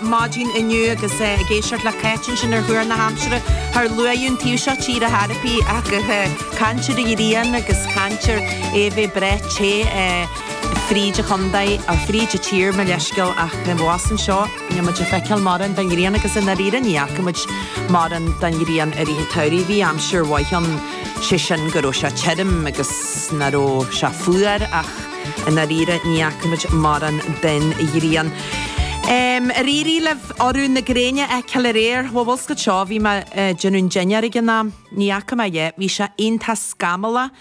maidin inniu agus é ag éisteacht le Cáit ansin ar Thuar na hAimsire, char luadh an taobh seo tíre ar chor ar bith ach caintear ar ghrian agus caintear é a bheith breá te fríd an chontae, nó fríd an tír, mo leithscéal, ach abhus anseo, níl muid ag feiceáil mórán den ghrian agus i ndáiríre ní fhaca muid mórán den ghrian i rith an tsamhraidh. Bhí aimsir mhaith ann, sé sin go raibh sé tirim agus nach raibh sé fuar ach. I ndáiríre, ní fhaca muid mórán den ghrian. Em, ar éirigh libh urú na gréine a fheiceáil aréir? Bhuel, an bhfuil a fhios agat seo, bhí mé a' déanamh dinnéir ag an am. Ní fhaca mé é. Bhí sé iontach scamallach.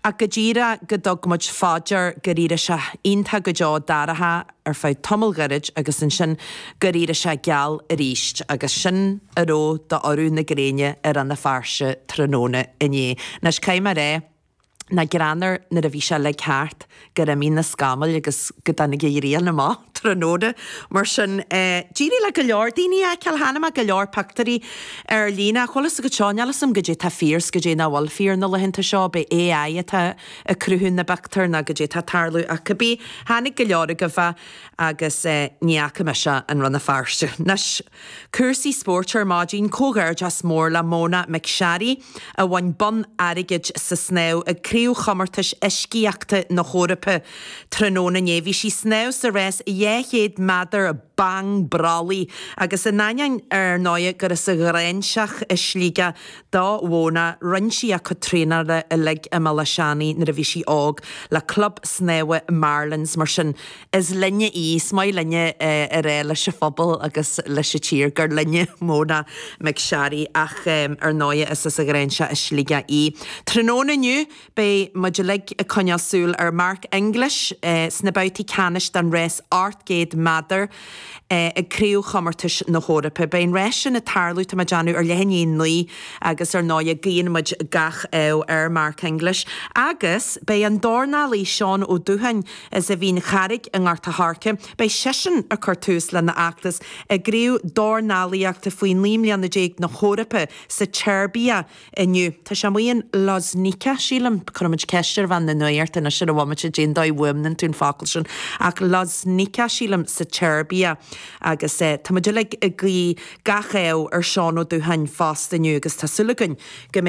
Ach go díreach go dtug muid fá dear, gur éirigh sé iontach go deo dorcha ar feadh tamaill ghoirid agus ansin gur éirigh sé geal aríst agus sin a raibh d'urú na gréine i Rann na Feirste tráthnóna inné. Anois, caithfidh mé a rá, nach greannmhar nuair a bhí sé uilig thart gur imigh na scamaill agus go dtáinig an ghrian amach tráthnóna. Mar sin, d'éirigh le go leor daoine é a fheiceáil. Chonaic mé go leor pictiúirí ar líne. Ach an bhfuil fhios agat seo, níl fhios a'm goidé tá fíor 's goidé nach bhfuil fíor na laethanta seo, ab é AI atá ag cruthú na bpictiúr nó goidé tá tarlú ach cibé, chonaic go leor agaibh agus ní fhaca mise é i Rann na Feirste. Anois, cúrsaí spóirt ar maidin. Comhghairdeas mór le Mona McSharry. a bhain bonn airgid sa snámh ag Craobhchomórtais Uiscíochta na hEoraipe tráthnóna inné. Bhí sí ag snámh sa rás 200 meadar bang brollaigh agus in ainneoin ar ndóigh gur as an Ghráinseach i Sligeach do Mhóna, rinn sí a cuid traenála uilig i mBéal Átha Seanaidh nuair a bhí sí óg le Club Snámha Marlins. Mar sin. is linne í, is maith linne a rá leis an phobal agus leis an tír, gur linne Mona McSharry, ach ar ndóighe is as an Ghráinseach i Sligeach í. Tráthnóna inniu beidh muid uilig ag coinneáil súil ar Mark English sna babhtaí ceannais den rás 800 meadar ag Craobhchomórtais na hEorpa. Beidh an rás sin ag tarlú, tá mé ag déanamh, ar leath i ndiaidh a naoi agus ar ndóighe guíonn muid gach ádh ar Mark English. Agus beidh an dornálaí Seán Ó Dúcháin as an Mhín Charraig i nGort a' Choirce beidh seisean ag cur tús lena fheachtas i gcraobh dornálaíochta faoi naoi mbliana déag na hEorpa sa tSeirbia inniu. Tá sé amuigh in Loznica, sílim. Cuirfidh muid ceist ar bhean na nuachta anois ar an bhomaite cén dóigh a bhfuaimníonn tú an focal sin, ach Loznica, sílim, sa tSeirbia. Agus tá muid uilig ag guí gach ádh ar Sheán Ó Dúcháin fosta inniu agus tá súil againn go mbeidh